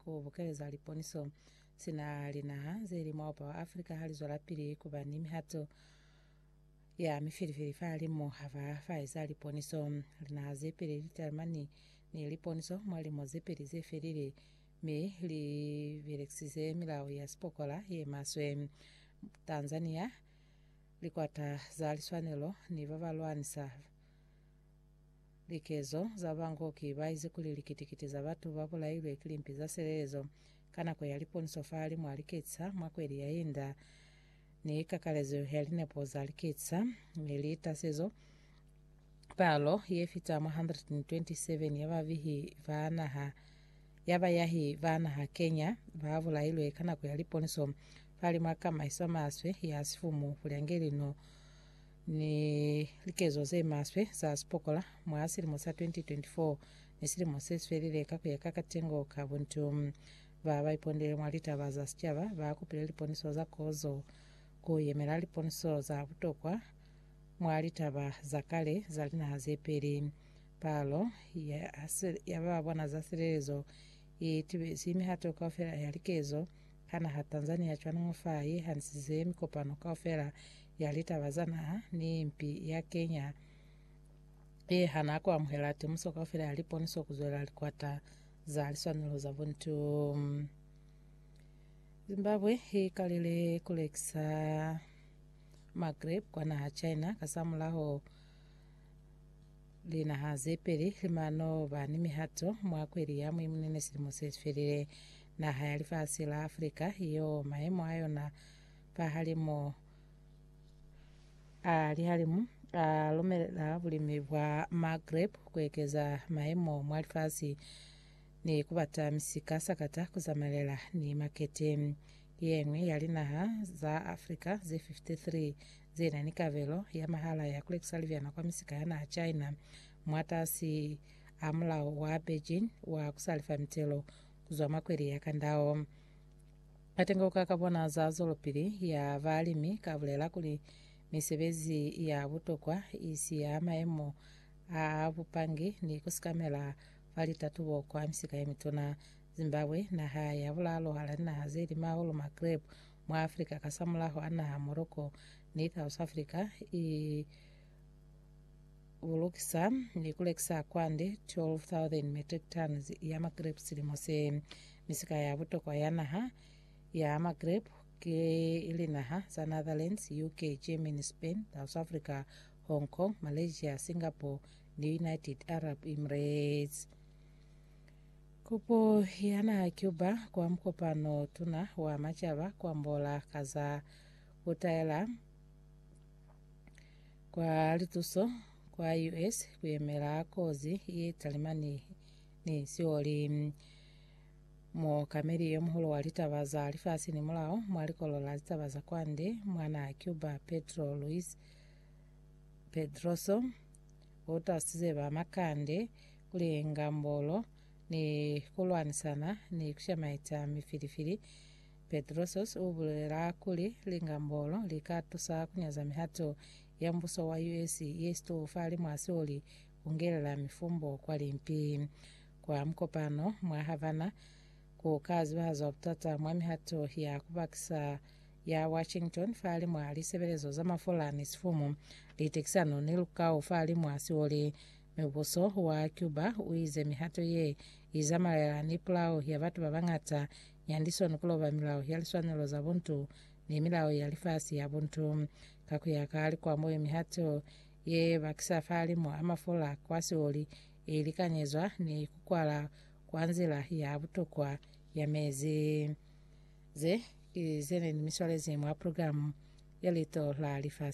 Ku bukeleza liponiso, sina linaha ze li mwa Upa wa Afrika ha li zwelapili ku ba ni mihato ya mifilifili fahalimu ha ba ba eza liponiso, linaha ze peli li talimani ni liponiso mwa lilimo ze peli ze felile mi li belekisize milao ya sipokola ye maswe. Tanzania, likwata za liswanelo ni ba ba lwanisa Likezo za bango ki baizi kuli likiti-kiti za batu ba bulailwe ki limpi za silelezo ka nako ya liponiso fa limu a liketsa mwa kweli ya inda, ni kakalezo ya linepo za liketsa, ni litasezo palo ye fita mwa 127 ya bavihi ba naha ya bayahi ba naha Kenya ba bulailwe ka nako ya liponiso fa limu a kamaiso maswe ya sifumu kulya nge lino ni likezo ze maswe za sipokola mwa silimo sa 2024 ni silimo se svelile ka kuya ka katengo ka buntu. Ba ba ipondele mwa litaba za sicaba ba kupile liponiso za kozo, ku yemela liponiso za butokwa mwa litaba za kale za linaha ze peli. Palo ya, ya ba ba bona za silelezo i tibezi mihato kaufela ya likezo Ka naha Tanzania cwaningo fa i hanisize mikopano kaufela ya litaba za naha ni impi ya Kenya ye hana ku amuhela temuso kaufela ya liponiso ku zwelela likwata za liswanelo za buntu. Zimbabwe i kalile ku lekisa magrape kwa naha China kasamulaho Linaha ze peli limano ba ni mihato mwa kweli ya Mwimunene silimo se sifelile. Naha ya lifasi la Afrika yo mayemo a yona pahalimu a lihalimu a lumelela bulimi bwa ma grape kuekeza mayemo mwa lifasi ni kubata misika sakata kuzamalela ni makete. Yeñwi ya linaha za Afrika ze 53 ze na ni kabelo ya mahala ya ku lekisa libyana kwa misika ya naha China mwatasi a mulao wa Beijing wa ku sa lifa mitelo ku zwa mwa kweli ya Kandao. Katengoka ka bona za zwelopili ya balimi ka bulela kuli misebezi ya butokwa i si ya maemo a bupangi ni ku sikamela fa litatubo kwa misika ye mituna. Zimbabwe, naha ya bulalo hala linaha ze lima hahulu ma grape, mwa Africa kasamulaho a naha Morocco ni South Africa i bulukisa ni kulekisa kwande 12,000 metric tons ya magrape silimo se. Misika ya butokwa ya naha ya magrape ke linaha za Netherlands, UK, Germany, Spain, South Africa, Hong Kong, Malaysia, Singapore ni United Arab Emirates. Kopo ya naha Cuba kwa mukopano tuna wa macaba kwa Mbola ka za kutaela kwa lituso kwa US kuyemela kozi ye talimani ni sioli. Muokameli yo muhulu wa litaba za lifasi ni mulao mwa likolo la litaba za kwande mwa naha Cuba Pedro Luis Pedroso utasize ba makande kulenga mbolo, ni kulwanisana ni kushamaita mifilifili. Petrosos ubulela kuli, Linga mbolo lika tusa kunyaza mihato ya mbuso wa US yesitou fali mwa sioli kungelela mifumbo kwa limpi. Kwa mukopano mwa Havana, kuka zibahazwa butata mwa mihato ya kubakisa ya Washington fali mwa lisebelezo za mafola ni sifumu, litekisano ni lukau fali mwa sioli. Mubuso wa Cuba u ize mihato ye i zamaela ni pulao ya batu ba bañata ya ndi soni ku loba milao ya liswanelo za buntu ni milao ya lifasi ya buntu. Ka ku ya ka likwamo ye mihato ye bakisa fahalimu a mafola kwa sioli i likanyezwa ni ku kwala kwa nzila ya butokwa ya mezi. Ze ki ze ne ni miswalezi mwa programu ya Lito la Lifasi.